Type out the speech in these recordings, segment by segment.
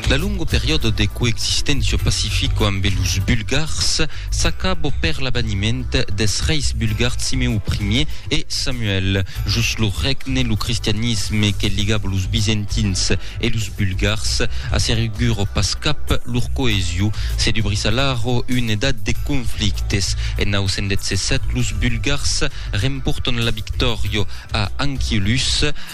La longo periòdo de coexisténcia pacifico ambe los Bulgars s'acabo per l'abaniment des reis bulgars Simeu Primier e Samuel. Jos lo règne, lo cristianisme que ligabo los Bizentins e los Bulgars asseriguro pas cap lor coesio. Se dubrís alara una edat de conflictes. En 917 los Bulgars rempòrtan la victòria a Anchialus.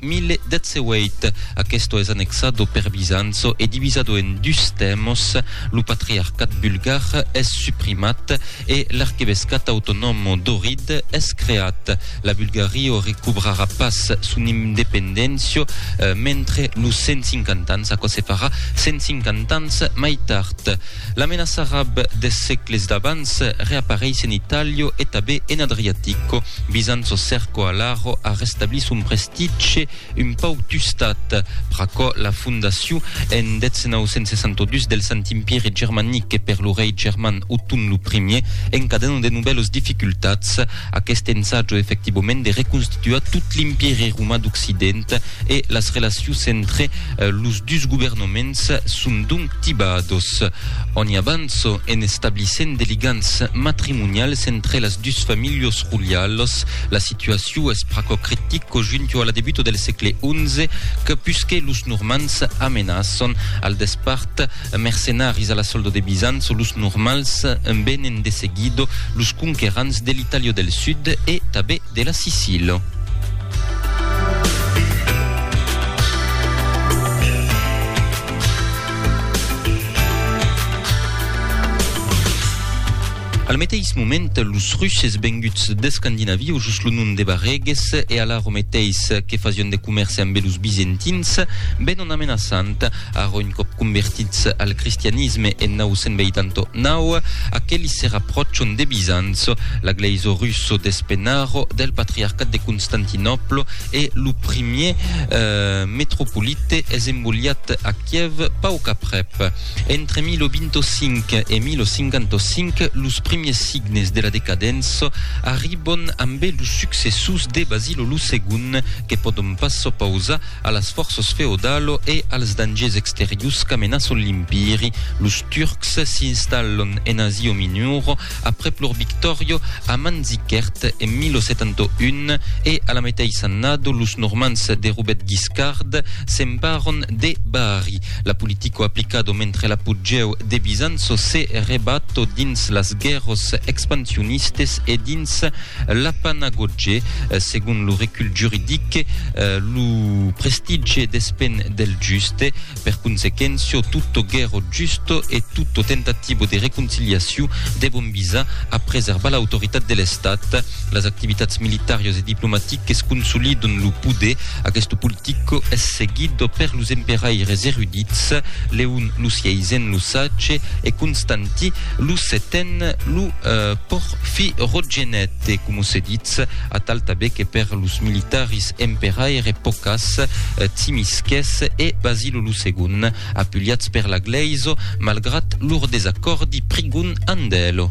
1018. Aquesto es annexado per Bizanço e divisado en dus tèmos, lo patriarcat bulgar es suprimat e l'arquebescat autonòmo d'Ohrid es creat. La Bulgario recobrarà pas son independéncia mentre los 150 ans, aquò se farà 150 ans mai tard. La menaça arab des sègles d'abans reapareis en Itàlia e tabé en Adriatico. Bizanço cerco alara a restablir son prestitge un pauc tustat. Pr'aquò la fondacion en 1962 del Sant Empire Germanic e per lo rei german Othon lo Primier encadena de novèlos dificultats aqueste ensatjo efectivament de reconstituar tot l'Empire Roman d'Occident e las relacions entre los dus governaments son donc tibados. Oni avanço en establissent de ligants matrimonials entre las dus familhos rolialos. La situaciu es pr'aquò critico junto a la debuta del sègle XI que pusque los Normands amenaçon al despart mercenaris a la soldo de Bizanço los Normals venen de seguido los conquerants de l'Itàlia del Sud e tabé de la Sicila. Al meteis moment, los Russes venguts d'Escandinavia, o just lo nom de Barreges, e ala ro meteis que fasion de comèrce ambe los Bizentins, venon amenaçant, ara un còp convertits al cristianisme en 989, aquelis se rapròchon de Bizanço, la glèisa russa d'Espenaro, del patriarcat de Constantinòplo, E lo primier metropolite es embolhat a Kièv pauc aprèp. Entre 1025 e 1055, los primiers signes de la decadença arribon ambe los successors de Basilo lo Segond, que pòdon pas s'opausar a las fòrças feodalo e als dangers exteriors qu'amenaçon l'Empiri. Los Turcs s'installon en Asia Minora aprèp lor victòria a Manzikert en 1071 e a la meteissa annada los Normands de Robèt Guiscard s'emparàn de Bari. La politica aplicada mentre l'apogèu de Bizanço se rebat dins las guèrras expansionistas e dins l'Apanagotge, segon lo recul juridic, lo prestigi despend del juste. Per consequentio, tutto ghero giusto e tutto tentativo de reconciliaciu devon visar a preservar l'autoritat de l'Estat. Las activitats militarios e diplomatiques consolidon lo poder. Aquesto politico es seguit per los emperaires erudits, Leon lo Sièisen lo Sage e Constanti lo Seten lo Portante. Fi Rotgenet e, como se ditz, atal tabe que per los militaris emperaire Pocas, Tsimisques e Basilo lo Segon, apuliats per la Gleiso, malgrat lor desacòrdi, prigon Andelo.